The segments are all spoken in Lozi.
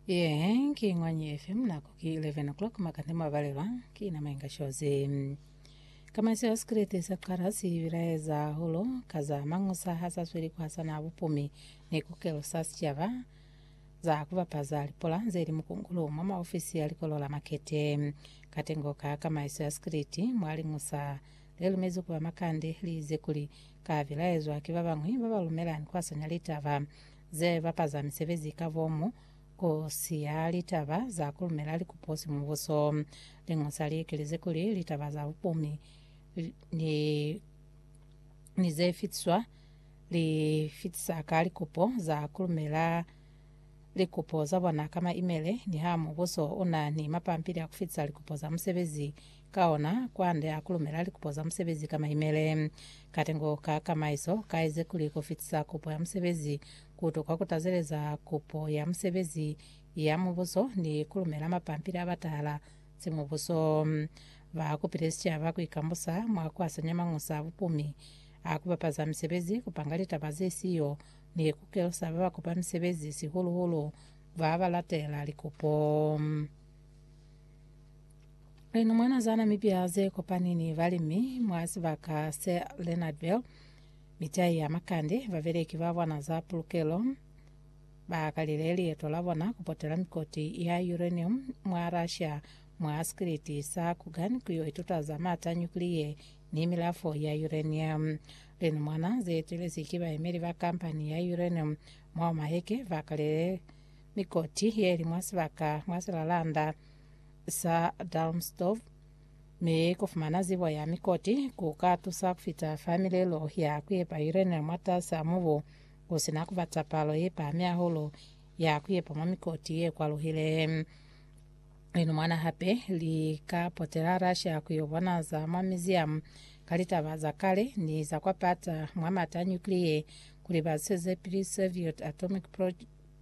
Yehe ki Ngwanyi FM nako ki 11 o'clock makande mabalelwa ki na mainga shozi. Kamaisi ya sikrete sa qara si bilaeza holo ka za mangusa ha sa sweli ku hasana bupumi ni kukelo sa sicaba za ku bapaza lipola ze li mukungulu mwa maofisi ya likolo la makete. Katengo ka kamaiso ya sikrete mwa lingusa le lumezi ku ba makande li ize kuli ka bilaezwa ki ba bañwi ba ba lumelani ku hasanya litaba ze bapaza misebezi ka bomu, ku siya litaba za ku lumela likupo si mubuso. Liñosa li ikilize kuli litaba za bupumi ni, ni ze fitiswa li fitisa ka likupo za ku lumela likupo za bona ka maimele, niha mubuso u na ni mapampili a ku fitisa likupo za musebezi Ka ona, kwande a kulumela likupo za musebezi ka maimele. Katengo ka kamaiso ka eze kuli ku fitisa kupo ya musebezi ku tokwa ku tazeleza kupo ya musebezi ya mubuso ni ku lumela mapampili a batahala simubuso. Ba kupile sicaba ku ikambusa mwa ku asanya mañusa a bupumi a ku bapaza misebezi, ku panga litaba ze siyo, ni ku kelusa ba ba kupa misebezi, sihulu-hulu ba ba latela likupo. Lena mwa nazana mipya ze kopani ni balimi mwa sibaka se Leonardville, mitai ya makande, babeleki ba bona za pulukelo ba kalile lieto la bona ku potela mikoti ya uranium mwa Russia mwa sikiliti sa Kugan ku yo ituta za maata a nyukliye ni milafo ya uranium. Lena mwana ze etelezi ki bayemeli ba kampani ya uranium mwa Omaheke ba kalile mikoti ye li mwa sibaka mwa silalanda sa Dalmstorf, mi ku fumana zibo ya mikoti ku ka tusa ku fita fa milelo ya ku yepa uranium mwatas'a mubu ku si na ku bata palo ye pahami hahulu ya ku yepa mwa mikoti ye kwaluhile. Lino mwana hape li ka potela Russia ku yo bona za mwa museum ka litaba za kale ni za kwa pata mwa mata a nuclear kuli ba sezepili Soviet atomic pro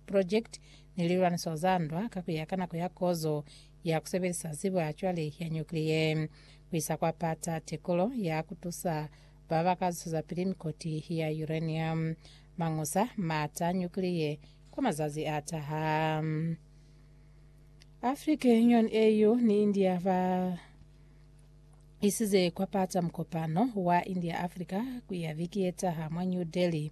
project ni lilwaniso za ndwa ka kuya ka nako ya kozo ya kusebelisa zibo ya cwale ya nyukliye kuisa kwa pata tekolo ya kutusa baba ka zusezapili mikoti ya uranium, mañusa maata a nyukliye kwa mazazi a taha. African Union, AU, ni India ba isize kwa pata mukopano wa India-Africa ku ya viki ye taha mwa New Delhi.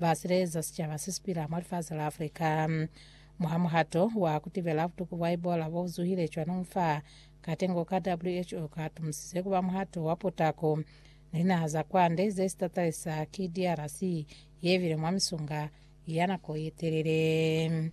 ba sileza sicaba se si pila mwa lifasi la Africa. Mwa muhato wa ku tibela butuku bwa Ebola bo bu zuhile cwanung fa, katengo ka WHO ka tumusize ku ba muhato wa potako, ni linaha za kwande ze si tatalisa ki DRC ye bile mwa misunga ya nako ye telele.